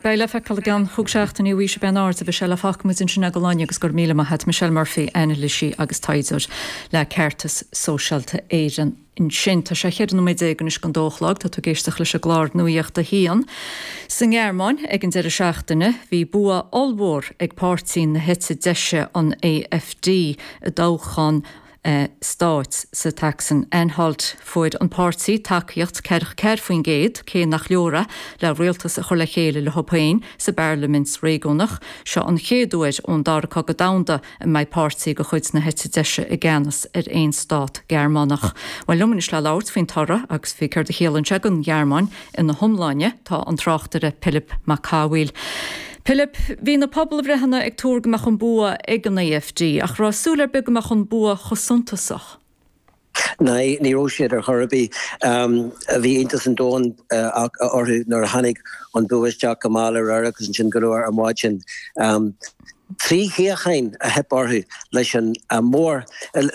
Beidh le feiceáil i gceann chúig seachtaine faoi cén aird a bheidh sé fágfaidh muid ansin é go fóill agus go raibh míle maith agat Michelle Murphy, ainilísí agus taighdeoir le Ceartas Sóisialta Éireann ansin. Tá sé cheithre nóiméad déag anois chun a dó a chlog, tá tú ag éisteacht leis an gclár Nuaíocht a hAon. Sa nGearmáin ag an deireadh seachtaine bhí bua ollmhór ag páirtí na heite deise an AfD i dtoghchán stáit sa tSacsain Anhalt. Fuair an páirtí tacaíocht ceathracha ceathair faoin gcéad, cé nach leor é le rialtas a chur le chéile leo féin sa bparlaimint réigiúnach. Seo an chéad uair ón Dara Cogadh Domhanda a mbeidh páirtí de chuid na heite deise i gceannas ar aon stát Gearmánach. Bhuel, liom anois le labhairt faoin toradh agus faoi céard a chiallaíonn sé don Ghearmáin. Ina hiomláine, tá an tráchtaire Pilib Mac Cathmhaoil. Pilib, bhí na pobalbhreitheanna ag tuar go mbeadh an bua ag an AfD, ach an raibh súil ar bith go mbeadh an bua chomh suntasach? No, ní raibh siad ar chor ar bith. Bhí iontas an domhain orthu nuair a tháinig an bua isteach go mall aréir agus ansin go luath ar maidin. Trí shuíocháin a theip orthu leis an mór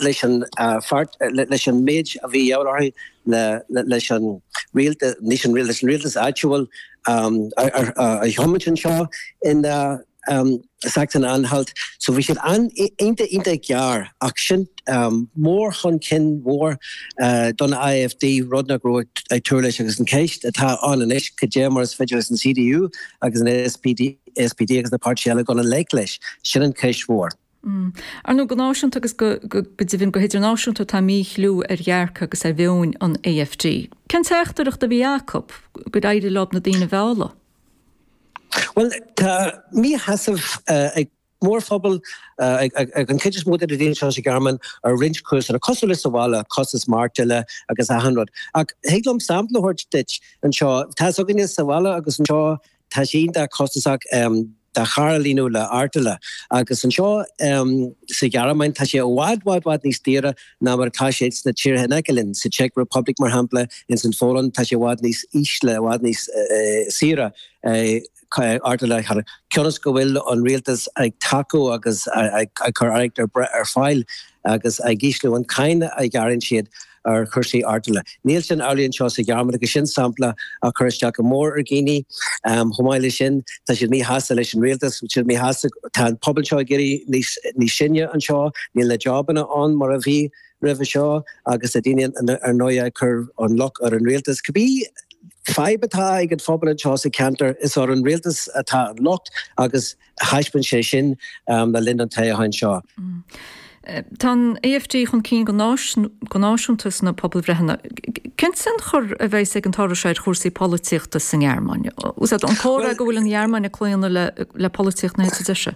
leis an páirt leis an méid a bhí de dhíth orthu. leis an rialt leis an leis an rialtas áitiúil a thiomáint anseo in Sachsen-Anhalt. So bhí siad iontach, iontach gearr ach sin céim chun cinn mhór don AfD, rud nach rabhthar ag tuar leis agus an cheist atá ann anois, cad é mar is féidir leis an CDU agus an SPD agus na páirtithe eile dul i ngleic leis? Sin an cheist mhór. Mh. Ar ndóigh, go náisiúnta agus go deimhin go hidirnáisiúnta tá míchliú ar dhearcadh agus ar mheoin an AfD. Cén teachtaireacht a bhí acu? Gur éirigh leo na daoine a mhealladh? Bhuel, tá míshásamh ag mórphobal, ag an chuid is mó de na daoine seo sa Ghearmáin, ar roinnt cúiseanna, cosúil le sa bhaile, costas maireachtála agus achan rud. Ach thig liom sampla a thabhairt duit anseo. Tá a fhios againne sa bhaile agus anseo Tá sé iontach costasach do charr a líonadh le artola agus anseo sa Ghearmáin tá sé i bhfad, bhfad, bhfad níos daora ná mar atá sé sna tíortha in aice linn, sa Czech Republic mar shampla, ins an Phólainn tá sé i bhfad níos ísle, i bhfad níos saoire artola a chur, cionn's go bhfuil an rialtas ag tacú agus ag cur airgead ar fáil agus ag ísliú an cáin a ghearrann siad. ar chúrsaí artola. Níl sin amhlaidh anseo sa Ghearmáin agus sin sampla a chuir isteach go mór ar dhaoine. Chomh maith leis sin, tá siad míshásta leis an rialtas, siad míshásta, tá an pobal seo ag éirí níos sine anseo, níl na jabanna ann mar a bhí roimhe seo agus tá daoine ar ndóigh ag cur an locht ar an rialtas. Cibé fadhb atá ag an phobal anseo sa cheantar, is ar an rialtas atá an locht agus. Thaispeáin sé sin le linn an toghcháin seo. Tá an AFD chun cinn go náisiúnta sna pobalbhreitheanna. Cén tionchar a bheidh ag an toradh seo ar chúrsaí polaitíochta sa nGearmáin? Is é an comhrá go bhfuil an Ghearmáin ag claonadh le polaitíocht na heite deise.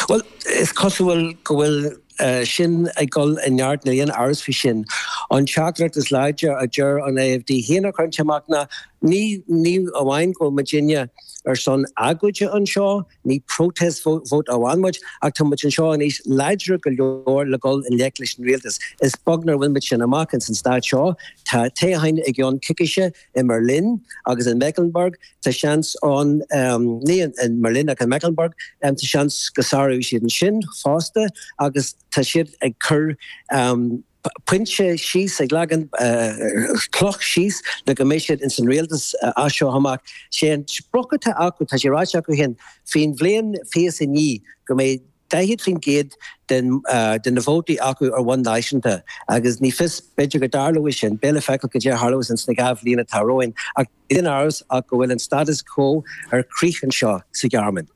Bhuel, is cosúil go bhfuil sin ag dul i neart níl aon amhras faoi sin. An teachtaireacht is láidre a d'éirigh leis an AFD a chur amach ná, ní ní amháin go bhfuil muidinne ar son agóide anseo, ní protest vote amháin muid, ach tá muid anseo anois láidir go leor le dhul i ngleic leis an rialtas. Is beag nach bhfuil muid sin amach ins an stát seo. Tá toghcháin i gceann coicíse. i mBerlin agus in Mecklenburg, ta seans ann ní i mBerlin ach in Mecklenburg tá seans go sáróidh siad ansin fosta agus tá siad ag cur pointe síos, ag leagan cloch síos le go mbeidh siad ins an rialtas as seo amach. Sé an sprioc atá acu, tá sé ráite acu féin faoin bhliain fiche is a naoi go mbeidh 40% de na vótaí acu ar bhonn náisiúnta agus ní fios, b'fhéidir go dtarlóidh sin, beidh le feiceáil cad é a tharlós ins na dhá bhliain atá romhainn, ach níl aon amhras ach go bhfuil an status quo ar crith anseo sa Ghearmáin.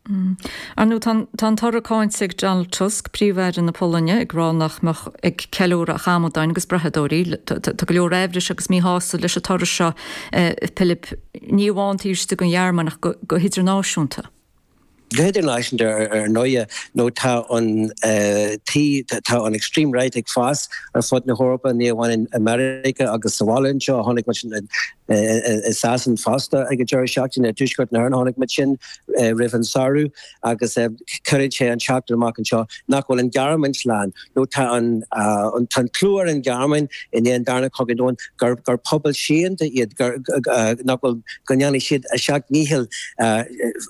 Ar ndóigh, tá an toradh cáinte ag Donald Tusk, Príomh-Aire na Polainne, ag rá nach mbeadh ag ceiliúradh ach amadáin agus brathadóirí. Tá go leor amhrais agus míshásamh leis an toradh seo, Pilib, ní amháin taobh istigh den Ghearmáin ach go hidirnáisiúnta. go hidirnáisiúnta ar ndóigh, nó tá an tá an extreme right ag fás ar fud na hEorpa, ní amháin i Meiriceá agus sa bhaile anseo, chonaic muid sin i Sasana fosta ag an deireadh seachtaine, i dtuaisceart na hÉireann chonaic muid sin roimh an samhradh, agus cuireann sé an teachtaireacht amach anseo nach bhfuil an Ghearmáin slán. nó tá an clú ar an Ghearmáin i ndiaidh an darna cogadh domhanda gur pobal síochánta iad, nach bhfuil, go ndéanfaidh siad a seacht ndícheall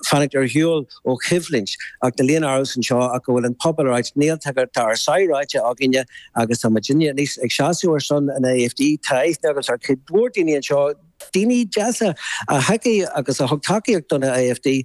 fanacht ar shiúl ó choimhlint, ach níl aon amhras anseo ach go bhfuil an pobal ag rá, níl, tá ár sáith ráite againne agus tá muid anois ag seasamh ar son an AfD tráth agus tá cuid mhór daoine anseo, daoine deasa, a thacaigh agus a thug tacaíocht don AfD.